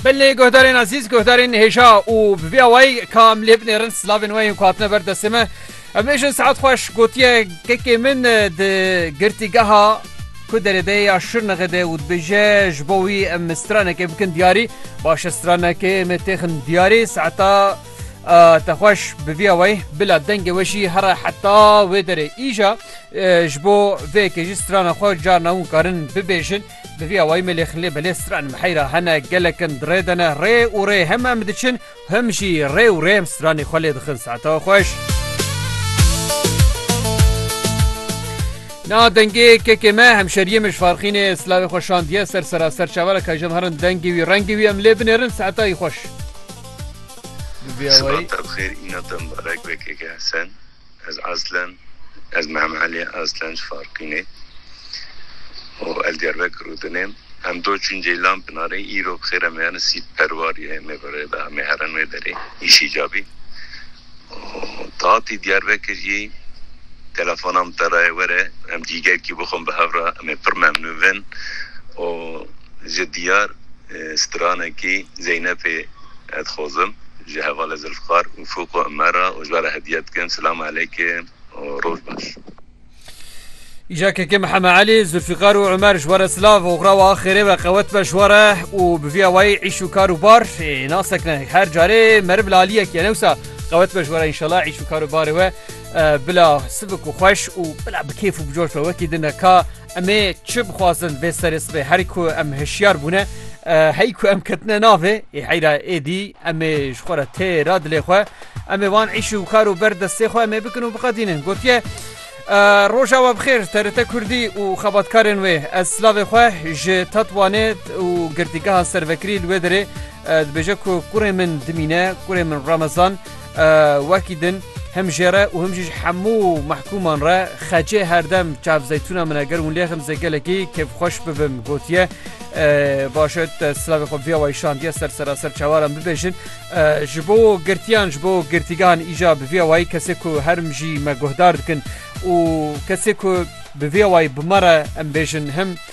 Belê guhdarên azîz guhdarên hêja û bi vê awayî ka em lê binêrin silavên wê yên ku hatine ber destê me em bêjin saet xweş gotiye kekê min di girtîgeha ku derêdeyê ya şirnexê de û dibêje ji bo wî em stranekê bikin diyarî başe stranekê me têxin diyarî saeta te xweş bi vê awayî bila dengê we jî here heta wê derê îja ji bo vê kêjî strana xwe carna hûn karin bibêjin Bi vî awayî me lê xilê belê stran miheyra hene gelek in di rê de ne rê û rê hem em diçin him jî rê û rê em stranê xwe lê dixin saetewa xweş. Na dengê kekê me hemşeriyê min ji farxînê silavê xwe şandiye ser seraser çavara ka ji em herin dengê wî rengê wî em lê binêrin saetayî xweş. Bi vî awayî. Sibata bi xêr îna te mibarek be keke Hesen. Ez aslen ez Mehem Elî aslen ji Farqînê û ez Diyarbekir û Dinêm. Em do çûn Ceylan Pinarê îro bi xêr em ê herin sît perwar yê me bi rê da em ê herin wê derê îşî cabî û tu hatî Diyarbekir jî telefona min te raye were em cîgerkî bixwin bi hev re em ê pir memnûn bin û ji Diyar stranekî Zeynepê ez dixwazim ji hevalê Zilfqar û Fûk û Imer re ojba re hediye dikim. Silam eleyke û roj baş. Îja kekê Miheme Elî, Zilfqar û Imer ji we re silav û xrawa axêrê ve qewet be ji we re û bi vî awayî îş û kar û bar nasek ne. Her carê meriv li aliyek ye ne wisa qewet be ji we re înşela îş û kar û barê we bila sivik û xweş û bila bi kêf û bi coş be wekî din e ka Em ê çi bixwazin vê serê sibê herî ku em hişyar bûne hey ku em ketine navê ê heyra êdî em ê ji xwe re tê ra dilê xwe em ê wan îş û kar û ber destê xwe em ê bikin û biqedînin gotiye Roja we bixêr TRT Kurdî û xebatkarên wê ez silavê xwe ji Tetwanê û girtîgeha servekirî li wê derê Dibêje ku kurê min dimîne, kurê min Ramazan wekî din him jê re û him jî ji hemû mehkûman re xecê herdem çav zeytûna min e ger hûn lê xim zê gelekî kêfxweş bibim gotiye başe te silavê xwe viya wayî şandiye ser seraser çawaran bibêjin ji bo girtiyan ji bo girtîgan îja bi viya wayî kesê ku herm jî me guhdar dikin û kesê ku bi viya wayî bi me re em bêjin him